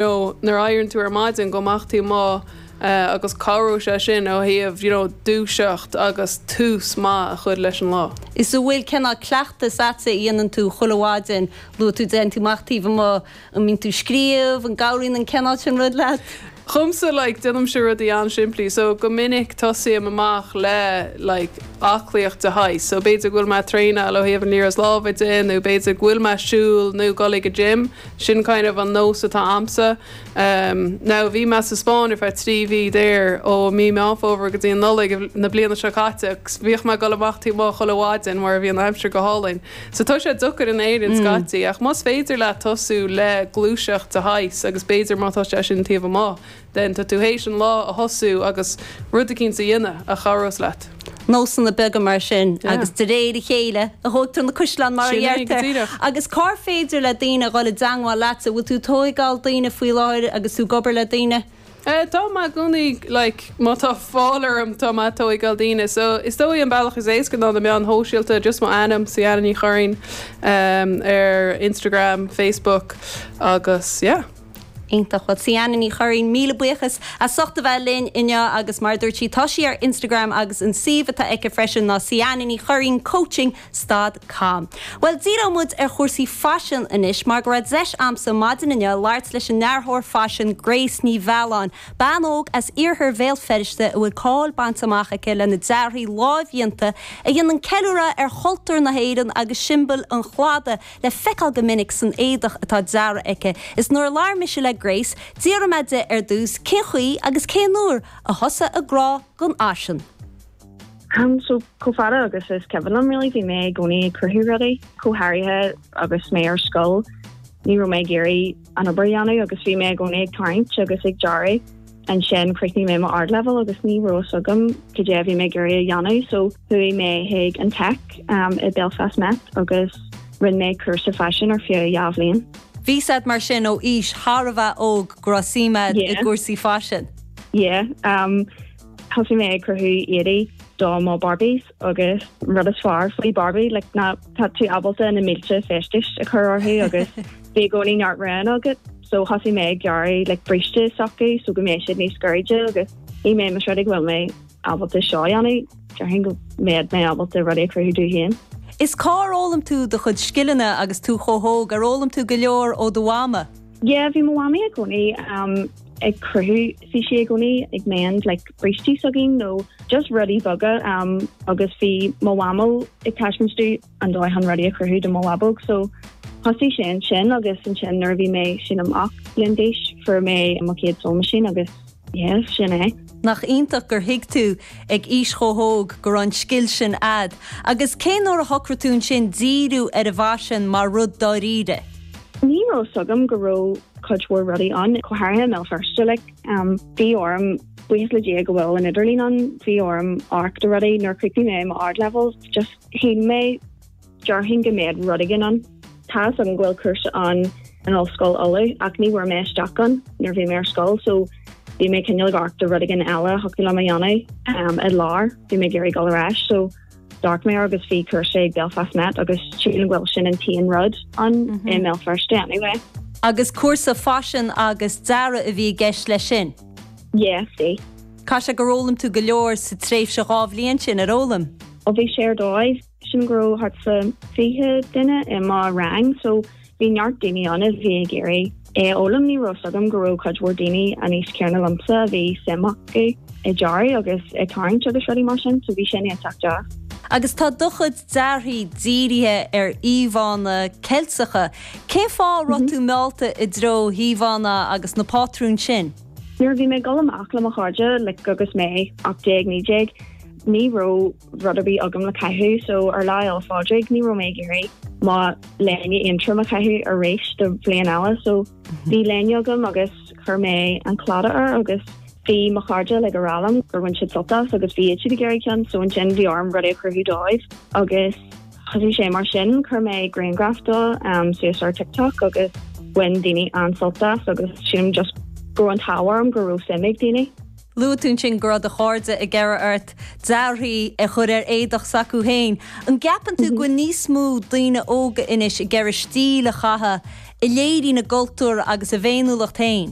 nó nuair a éiríonn tú ar maidin go mbeadh tú amuigh agus cabhróidh sé sin ó thaobh you know dúiseacht agus tús maith a chuir leis an lá. Is an bhfuil cineál cleachtas a'tsa a dhéanann tú chuile mhaidin luaigh tú dtéann tú amach taobh amuigh, an mbíonn tú scríobh, an gcabhraíonn an cineál sin rud leat? Dhomsa like déanaimse rudaí an-simplí so go minic tosaím amach le like aclaíocht de shaghas so b'fhéidir go bhfuil mé a' traenáil ó thaobh an liathróid láimhe de nó b'fhéidir go bhfuil mé a' siúl nó dul ag an gym, Sin kind of an nós atá a'msa. Now bhí mé sa Spáinn ar feadh trí mhí there ó mí Meán Fómhair go dtí an Nollaig na bliana seo caite agus bhíodh mé ag dul amach taobh amuigh chuile mhaidin mar bhí an aimsir go hálainn. So tá sé deocair in Éirinn scaití ach más féidir leat tosú le gluaiseacht de shaghas agus b'fhéidir má tá sé sin taobh amuigh, tá tú théis an lá a thosú agus rud eicínt a dhéanamh a chabhrós leat. Nósanna beaga mar sin agus de réir a chéile a thógtar na caisleáin mar a dheirtear. Agus cár féidir le daoine a dhul i dteangmháil leatsa? Bhfuil tú ag tóigeáil daoine faoi láthair agus tú ag obair le daoine? Eh tá mé i gcónaí like má tá fáil orm tá mé a' tóigeáil daoine so is dóigh an bealach is éasca ná na meáin shóisialta just mo ainm, Ciana Ní Churraoin, ar Instagram, Facebook agus yeah. Iontach. Bhuel, Ciana Ní Churraoin, míle buíochas as ucht a bheith linn inniu agus mar a dúirt sí, tá sí ar Instagram agus an suíomh atá aici freisin ná Ciana Ní Churraoin Coaching stad com. Bhuel, díreoidh muid ar chúrsaí faisin anois mar go raibh deis a'msa maidin inniu labhairt leis an ndearthóir faisin Grace Ní Mhealláin, bean óg as iarthar Bhéal Feirste a bhfuil cáil bainte amach aici lena dearthaí lámhdhéanta a dhéanann ceiliúradh ar chultúr na hÉireann agus siombail an Chladaigh le feiceáil go minic san éadach atá deartha aici, is nuair a labhair mise le Grace, d'iarr mé di ar dtús cén chaoi agus cén uair a thosaigh a grá don fhaisean. Am, so chomh fada agus is cuimhin liom really, bhí mé i gcónaí ag cruthú rudaí, go háirithe agus mé ar scoil, ní raibh mé ag iarraidh an obair a dhéanamh agus bhí mé i gcónaí ag tarraingt agus ag dearadh. ansin chríochnaigh mé mo Ardleibhéal agus ní raibh fhios agam cad é a bhí mé ag iarraidh a dhéanamh so chuaigh mé chuig an Tech um i Belfast Met agus rinne mé cúrsa faisin ar feadh dhá bhliain. Bhí fhios a'd mar sin ó aois thar a bheith óg go raibh suim a'd i Yeah. gcúrsaí faisin? Yeah um thosaigh mé ag cruthú éadaí do mo Barbies. agus an rud is fearr faoi Barbie like ná tá tú ábalta na mílte feistis a chur orthu agus bhí i gcónaí neart roghanna agat so thosaigh mé ag gearradh like bríste s'acu so go mbeidh siad níos gairide agus bhí mé más rud é go bhfuil mé ábalta seo a dhéanamh déarfainn go mbeadh mé ábalta rudaí a chruthú domh féin. Is cá ar fhoghlaim tú do chuid scileanna agus tú chomh hóg? Ar fhoghlaim tú go leor ó do mhama? Yeah bhí mo mhamaí i gcónaí ag cruthú. Bhí sí i gcónaí ag mend like brístí s'againn nó just rudaí beaga um agus bhí mo mhamó ag taispeáint dom an dóigh chun rudaí a chruthú do mo bhabóg so thosaigh sé ansin agus ansin nuair a bhí mé, sílim, ocht mbliana d'aois fuair mé mo chéad sewing machine agus yeah sin é. Nach iontach gur thuig tú ag aois chomh hóg go raibh an scil sin a'd agus cé nuair a shocraigh tú ansin díriú ar an bhfaisean mar rud dáiríre? Ní raibh fhios agam go raibh cuid mhór rudaí ann, go háirithe i mBéal Feirste like. Bhí orm, buíochas le Dia go bhfuil an idirlíon ann, bhí orm amharc do rudaí. Nuair a chríochnaigh mé mo Ardleibhéal just chinn mé, déarfainn go mbeadh rud éigin ann. Tá's agam go bhfuil cúrsa ann in Ollscoil Uladh ach ní bhfuair mé isteach ann nuair a bhí mé ar scoil so bhí mé cineál ag amharc do rud éigin eile a thiocfadh liom a dhéanamh i lár, bhí mé ag iarraidh dul ar ais so. D'amharc mé agus bhí cúrsa ag Belfast Met agus sílim go bhfuil sin an t-aon rud ann i mBéal Feirste anyway. Agus cúrsa faisin agus dearadh a bhí i gceist leis sin? Yeah, bhí. Caithfidh sé gur fhoghlaim tú go leor sa tréimhse dhá bhliain sin, ar fhoghlaim? Ó bhí sé ar dóigh. Sílim go raibh thart fá 20 duine i mo rang so. Bhí neart daoine ann a bhí ag iarraidh é a fhoghlaim, ní raibh 's agam go raibh cuid mhór daoine an aois chéanna liomsa a bhí suim acu i dearaí agus i tarraingt agus rudaí mar sin so bhí sin iontach deas. Agus tá do chuid dearaí dírithe ar íomhánna Ceilteacha, cén fáth a raibh tú meallta i dtreo na n-íomhánna agus na pátrúin sin? Nuair a bhí mé ag dul amach le mo chairde like agus mé 18, 19, ní raibh. rud ar bith agam le caitheamh, so ar Lá Fhéile Pádraig ní raibh mé ag iarraidh mo léine Aontroma a chaitheamh arís do bhliain eile, so bhí léine agam agus chuir mé an claddagh air agus bhí mo chairde uilig ag a rá liom gur bhain siad sult as agus bhí siad ag iarraidh ceann, so ansin bhí orm rudaí a chruthú dóibh agus thosaigh sé mar sin, chuir mé grianghraf de suas ar TikTok agus bhain daoine an-sult as agus sílim just go raibh an t-ádh orm go raibh suim ag daoine. Luaigh tú ansin go raibh do chairde ag iarraidh ort dearaí a chur ar éadach s'acu féin. An gceapann tú go bhfuil níos mó daoine óga anois ag iarraidh stíl a chaitheamh a léiríonn a gcultúr agus a bhféiniúlacht féin?